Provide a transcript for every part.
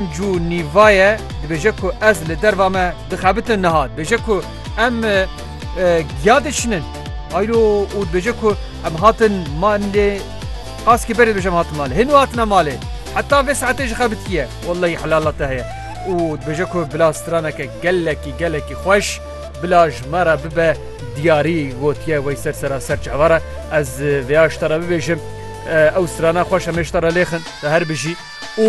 Cû Nîvaye dibêje ku ez li derva me dixebitin niha dibêje ku em giya diçinin ayro û dibêje ku em hatin malê qaskî berê dibêje em hatin malê hêno hatine malê heta vê saetê ji xebitiye wellahî helala te heye û dibêje ku bila straneke gelekî gelekî xweş bila ji me re bibe diyarî gotiye wey ser seraser çi hevara ez vêya ji te re bibêjim ew strana xweş em ê ji te re lêxin te her bijî û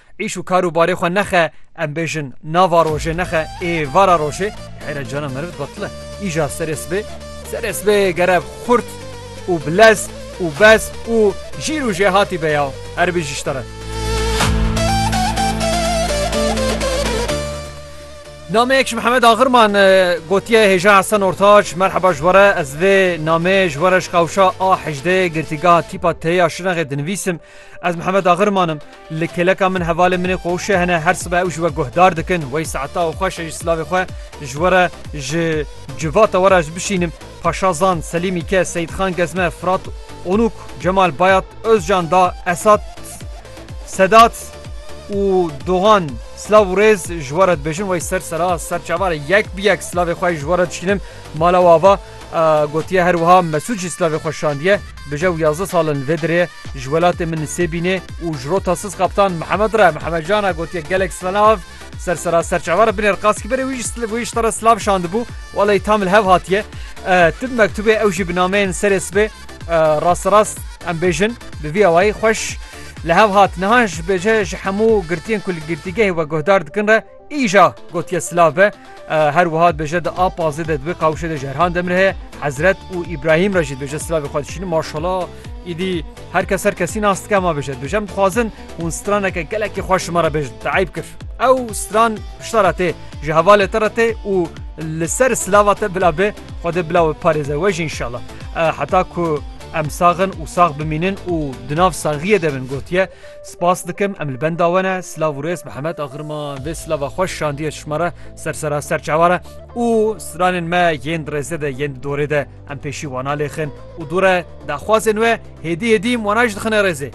Îş û kar û barê xwe nexe, em bêjin nava rojê nexe ê vara rojê, heyre cana meriv dibatil e. Îja serê sibê, serê sibê gere xurt û bi lez û bez û jîr û jêhatî be ya. Erbî ji te re. Nameyek ji Mihemed Axirman gotiye hêja Hesen Ortaç merheba ji were ez vê nameyê ji were ji qewşa A hejdeyê girtîgeha tîpa têya şinexê dinivîsim ez Mihemed Axirmanim Li kêleka min hevalên min ê xwe wişe hene, her sibe ew ji we guhdar dikin. Wey saeta û xweş e ji silavê xwe ji we re ji civata we re ez bişînim. Paşa Zand, Selîmî Ke, Seyîdxan Gezme, Firat Onûk, Cemal Bayat, Ozcan Da, Esat, Sedat û Dogan silav û rêz ji we re dibêjin. Wey ser sera, ser çavare yek bi yek silavê xwe ji we re dişînim. Mala we ava. Gotiye her wiha Mesûd jî slavê xwe şandiye, Bije û yazdeh sal in li vê dirê ye, ji welatê min nisê bînê û ji rota siz qeptan Mihemed re Mihemed Can e gotiye gelek slav ser sera serçava re binêr qas kî berê wî jî wî ji te re slav şandibû wa lê tam li hev hatiye tu bi mektûbê ew jî bi nameyên serê sibê rasterast em bêjin bi vî awayî xweş li hev hat niha ji bêje ji hemû girtiyên ku li girtîgehê we guhdar dikin re Îja gotiye silav be. Her wiha dibêje di a pazê de di wê qawişê de ji Erhan Demir heye Hezret û Îbrahîm re jî dibêje silavê xwe dişînin maşala îdî her kes her kesî nas dike ma bêje dibêje em dixwazin hûn straneke gelekî xweş ji me re bêjin te eyb kir ew stran pişta re tê ji hevalê te re tê û li ser silava te bila bê xwe dê bila we parêze we jî inşallah heta ku em saxin û sax bimînin û di nav saxiyê de bin gotiye Spas dikim em li benda we ne. Silav û rêz Mihemed Agirma vê silava xwe şandiye çişma re ser seraser çawa re û stranên me yên di rêzê de yên di dorê de em pêşî wan alêxin û dû re daxwazên we hêdî hêdî wan jî dixine rêzê.